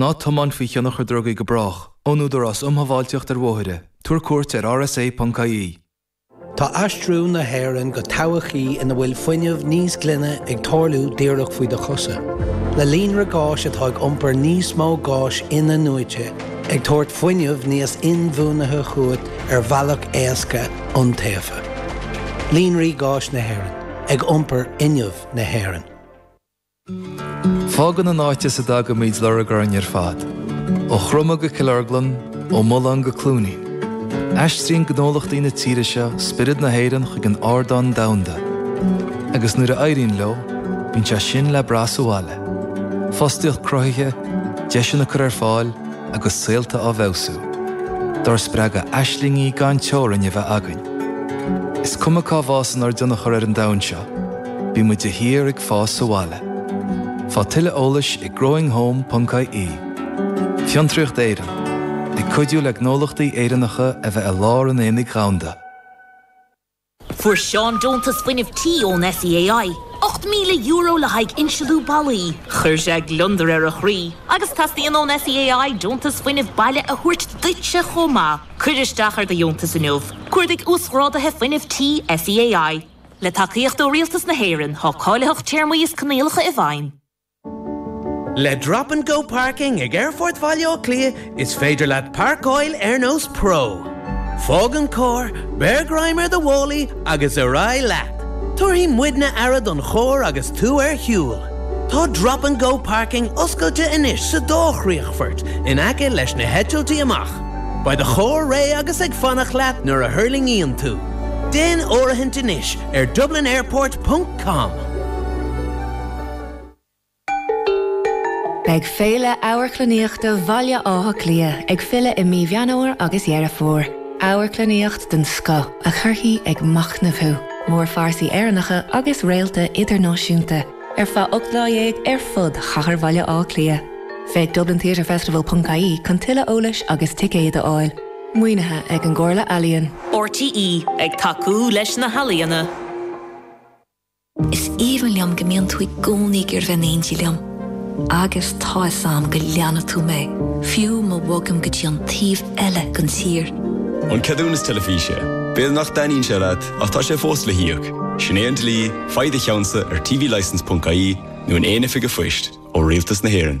Ná tiomáin faoi thionchar drugaí go brách. Ón Údarás Um Shábháilteacht ar Bhóithre, Tabhair cuairt ar rsa.ie. Tá aistriú na hÉireann go todhchaí ina bhfuil fuinneamh níos glaine ag tarlú díreach faoi do chosa. Le líonra gáis atá ag iompar níos mó gáis in-athnuaite, ag tabhairt fuinnimh níos inbhuanaithe chugat ar bhealach éasca, iontaofa. Líonraí Gáis na hÉireann, ag iompar fhuinneamh na hÉireann. Fágann an áit as a dtagaimid lorg orainn ar fad, ó Chromadh go Cill Orglan, ó Mhullán go Cluain Eois. Aistríonn gnólachtaí na tíre seo spiorad na hÉireann chuig an ardán domhanda, agus nuair a éiríonn leo, bíonn sé sin le brath sa bhaile, fostaíocht cruthaithe, deiseanna á gcur ar fáil agus saolta á bhfeabhsú. Dár spreagadh aislingí gan teorainn a bheith againn, is cuma cá bhfásann ár dtionchar ar an domhan seo. Bíonn muid de shíor ag fás sa bhaile. Faigh tuilleadh eolais ag growinghome.ie. Fiontraíocht Éireann, ag cuidiú le gnólachtaí Éireannacha a bheith i lár an aonaigh dhomhanda. Fuair Seán deontas fuinnimh tí ón SEAI, €8,000 le haghaidh insliú ballaí. Chuir sé gliondar ar a chroí agus teastaíonn ón SEAI deontas fuinnimh baile a thabhairt duitse chomh maith. Cuir isteach ar do dheontas inniu. Cuardaigh Uasghráduithe Fuinnimh Tí SEAI. Le tacaíocht ó Rialtas na hÉireann. Tá cáilitheacht, téarmaí is coinníollacha i bhfeidhm. Le Drop and Go Parking ag Aerfort Bhaile Átha Cliath is féidir leat páirceáil ar nós pro. Fág an carr, beir greim ar do mhálaí agus ar aghaidh leat! Tabharfaidh muidne aire don charr agus tú ar shiúl. Tá Drop and Go Parking oscailte anois sa dá chríochfort in aice leis na heitiltí amach. Beidh do charr réidh agus ag fanacht leat nuair a thuirlingíonn tú. Déan áirithint anois ar dublinairport ponc com. Beidh Féile Amharclannaíochta Bhaile Átha Cliath ag filleadh i mí Mheán Fhómhair agus Dheireadh Fómhair. Amharclannaíocht den scoth a chuirfidh ag machnamh thú, mórphearsaí Éireannacha agus réalta idirnáisiúnta. ar feadh ocht lá dhéag ar fud chathair Bhaile Átha Cliath. Féach dublintheatrefestival.ie chun tuilleadh eolais agus ticéid a fháil. Maoinithe ag an gComhairle Ealaíon. RTÉ, ag tacú leis na healaíona. Is aoibhinn liom go mbíonn tú i gcónaí ag dul a bheith in éindí liom. Agus tá fhios a'm go leanfaidh tú mé, fiú má bhogaim go dtí an taobh eile den tír. An ceadúnas teilifíse. B'fhéidir nach dtaitníonn sé leat. Ach tá sé fós le híoc. Sin é an dlí, faigh do cheann-sa ar tvlicense.ie nó in aon oifig an phoist, ó Rialtas na hÉireann.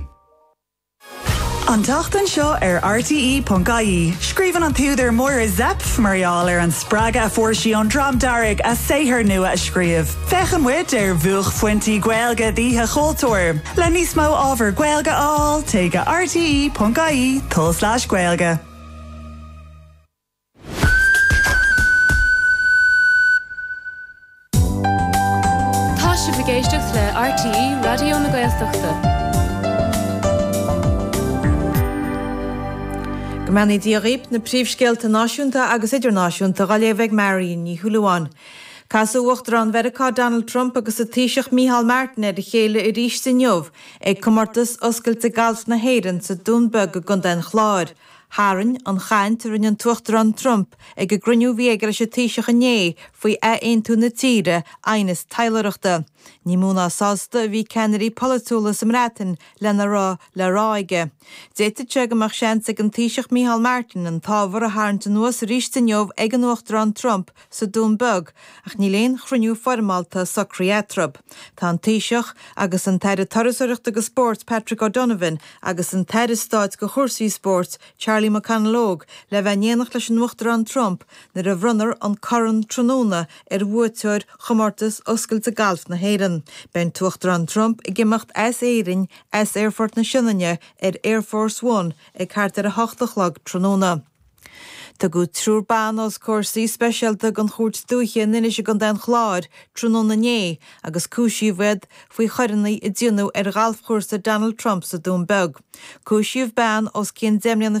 An tseachtain seo ar RTÉ.ie, scríobhann an t-údar Máire Zepf mar gheall ar an spreagadh a fuair sí ón Dream Dearg a saothar nua a scríobh. Féachann muid ar bhuaicphointí Gaeilge d'Oíche Chultúir. Le níos mó ábhar Gaeilge a fháil, téigh go rte.ie/gaeilge. Tá sibh ag éisteacht le RTÉ Raidió na Gaeltachta. Go mbeannaí Dia dhaoibh, na príomhscéalta náisiúnta agus idirnáisiúnta á léamh ag Marion Ní Shúilleabháin. Casadh Uachtarán Mheiriceá Donald Trump agus an Taoiseach Micheál Martin ar a chéile arís inniu ag Comórtas Oscailte Gailf na hÉireann sa Dún Beag i gContae an Chláir, Tharraing an chaint a rinne an tUachtarán Trump ag an gcruinniú a bhí aige leis an Taoiseach inné faoi athaontú na tíre aighneas taidhleoireachta. Ní mó ná sásta a bhí ceannairí polaitiúla sa mBreatain lena raibh le rá aige. D'fhéadfadh sé go mbeadh seans ag an Taoiseach Micheál Martin an t-ábhar a tharraingt anuas arís inniu ag an Uachtarán Trump, sa Dún Beag, ach níl aon chruinniú foirmeálta socraithe eatarthu. Tá an Taoiseach, agus an tAire Turasóireachta agus Spóirt, Patrick O'Donovan, agus an tAire Stáit do chúrsaí spóirt, Charlie McConalogue, le bheith in éineacht leis an Uachtarán Trump nuair a bhronnfar an Corn tráthnóna ar bhuaiteoir Chomórtas Oscailte Gailf na hÉireann. Beidh an tUachtarán Trump ag imeacht as Éirinn as Aerfort na Sionainne ar Air Force One ag thart ar a hocht a chlog tráthnóna. Tugadh triúr ban os comhair suí speisialta den Chúirt Dúiche in Inis i gContae an Chláir tráthnóna inné agus cúisíodh iad faoi choireanna a rinneadh ar ghalfchúrsa Donald Trump sa Dún Beag. Cúisíodh bean os cionn deich mbliana